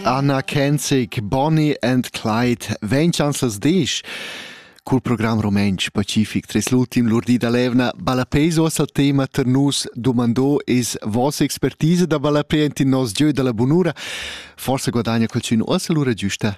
Anna Kenzic, Bonnie and Clyde vegn chanzas disch. Cul program rumentsch pacific tres l'ultim lur di da levna Ballapei uossa tema ter nus domandò es vossa expertise da ballapei int in nos gieu da la bunura. Forsa guadagna qualchün uossa lura giusta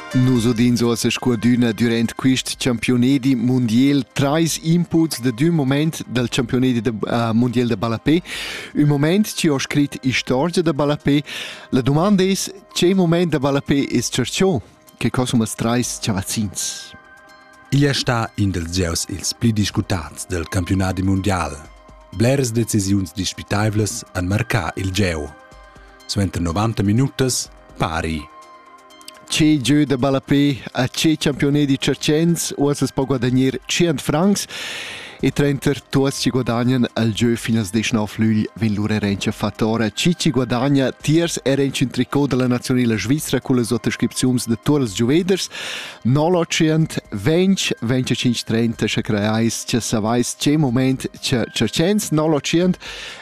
Nus udins ossa scudüna durant quist campiunedi mundial trais inputs da d'ün moment dal campiunedi da, uh, mundial da ballapè. Ün moment chi ho scrit istorgia da ballapè. La dumanda es, che moment da ballapè es cerchò? Che cosumas trais chavazzins? Igl è stà in dels gieus ils pli discutats del campiunadi mundial. Bleras decisiuns dispitaivlas han marcà il gieu. Suenter 90 minutas, pari. Tgi giu da ballapé a tgi campiunedi tscherchens uossa po guadagnar 100 francs e trenter tuots chi guadagnan al gieu finas 19 lügl vegn lur erencha fattora. Chi chi guadagna tiers erench in tricot della nazionala svizra con le sottoscripziuns de tuot les giuveders 0800 20 25 30 sche creais che savais che moment che tscherchens 0800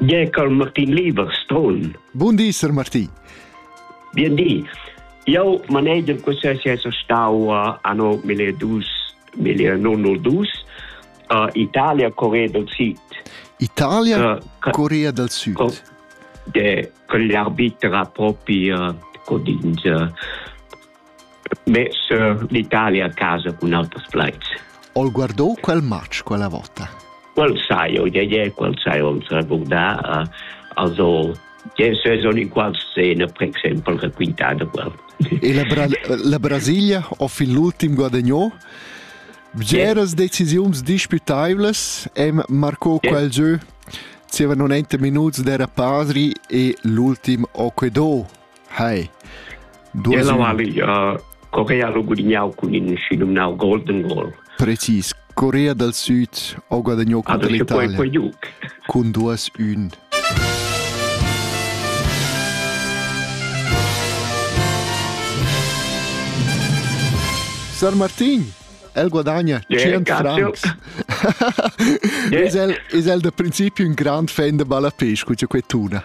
Bien col Martin Lieber, Stron. Bun di, Sir Martin. Bien di. Io manegem questo essere stau uh, anno 1902 uh, Italia Corea del Sud. Italia uh, Corea del Sud. Co, de, con l'arbitra proprio uh, codinge Be sur l'Italia a casa cun auters plaids. Ho guardò quel match quella vota? Quel sai, io ie, quel sai, on sa guardà, also, je se sono in qual scena, per esempio, raccontata quel. E la, Bra la Brasilia ho fin l'ultim guadagnò? Bgeras decisiuns disputables em marcò yeah. quel gieu zieva 90 minuts d'era pasri e l'ultim Oquedò Hai. Ella mali uh, Corea lo gudignau cun in si numnau Golden Goal. Precis, Corea dal Sud ho guadagnou contro l'Italia cun 2-1. Sar Martin, el guadagna yeah, 100 francs. yeah. is, el, is el da principio un grand fan de ballapesco, cioè que tuna.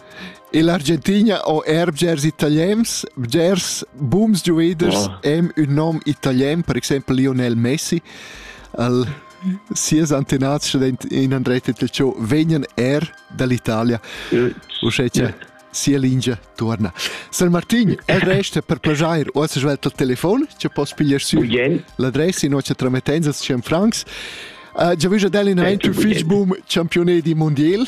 Ell'Argentina ho er bgers italiens. Bgers booms giuaders wow. hem ün nom italien, per exempel Lionel Messi. Al sias antenats in Andretta Telciò vegnan er dall'Italia. Uschè che yeah. sia lingia torna. San Martin, el resta per plagiar o as svelt il telefon, che poss pigliar sü l'adressa in nostra tramettenza, Franks. Uh, già vista dell'in Andrew Fitchboom, campione di mondial,